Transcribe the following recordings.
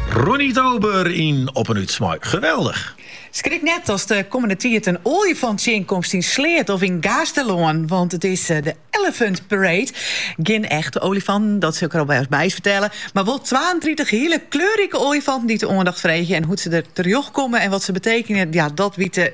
Ronnie Tober yn Op en Ut mei Geweldig. Skrik net ast de kommende tiid in oaljefant tsjinkomst yn Sleat of yn Gaasterlân, want it is de Elephant Parade. Gjin echte oaljefanten, dat sil ik der alfêst by fertelle, mar wol twaentritich hiele kleurrike oaljefanten dy't de oandacht freegje. En hoe't se der terjochtkomme en wat se betekenje, ja, dat wite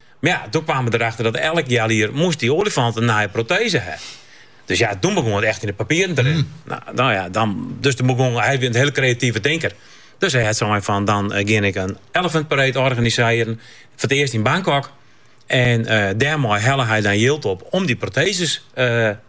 Mar ja, doe kwamen we derefter dat elk healjier moast dy olifant in nije proteze ha. Dus ja, doe begûn it echt yn de papieren te rinnen. Hmm. Nou, nou ja, dan, dus doe begûn, hy wie in hiele kreative tinker. Dus hy hat sein fan, dan eh, gean ik een elephant parade organisearje, foar it earst yn Bangkok. En uh, eh, dêrmei helle hy dan jild op om dy proteses uh,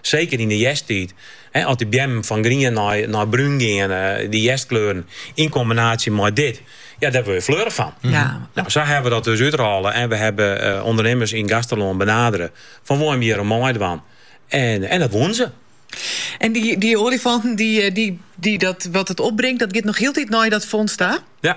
Seker yn de hjersttiid, as de beammen fan grien nei brún geane, dy hjerstkleuren yn kombinaasje mei dit, ja dêr word je fleurich fan. Nou, sa hawwe we dat dus útrôle en we hawwe ûndernimmers yn Gaasterlân benadere fan wolle jim hjir oan meidwaan en dat woenen se. En dy olifanten, dy, dy, dy, dat wat it opbringt, dat giet noch hieltyd nei dat fonds ta? Ja.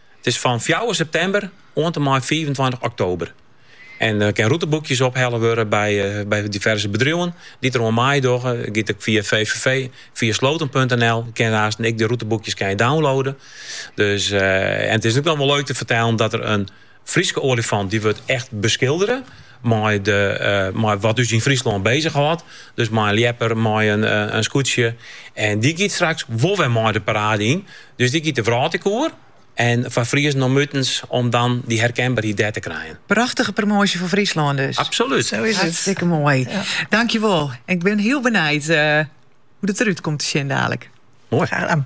It is fan fjouwer septimber oant en mei fiifentweintich oktober. En der kin rûteboekjes ophelle wurde by diverse bedriuwen dy't der oan meidogge. Dat giet ek fia VVV, fia Sloten punt nl kinne aanst ek de rûteboekjes kinne downloade. Dus en it is ek noch wol leuk te fertellen dat der in Fryske olifant dy wurdt echt beskildere. Mei de, mei wat ús yn Fryslân bezichhâldt. Dus mei in ljepper, mei in skûtsje. En dy giet straks wol wer mei de parade yn. Dus dy giet de wrâld ek oer. En foar Friezen om utens om dan dy herkenberheid dêr te krijen. Prachtige promoasje foar Fryslân dus. Absolút. Sa is it. Hartstikke moai. Tankewol. Ik bin hiel benijd hoe dat eruit komt te sjen dadelijk. Mooi. Graag gedaan.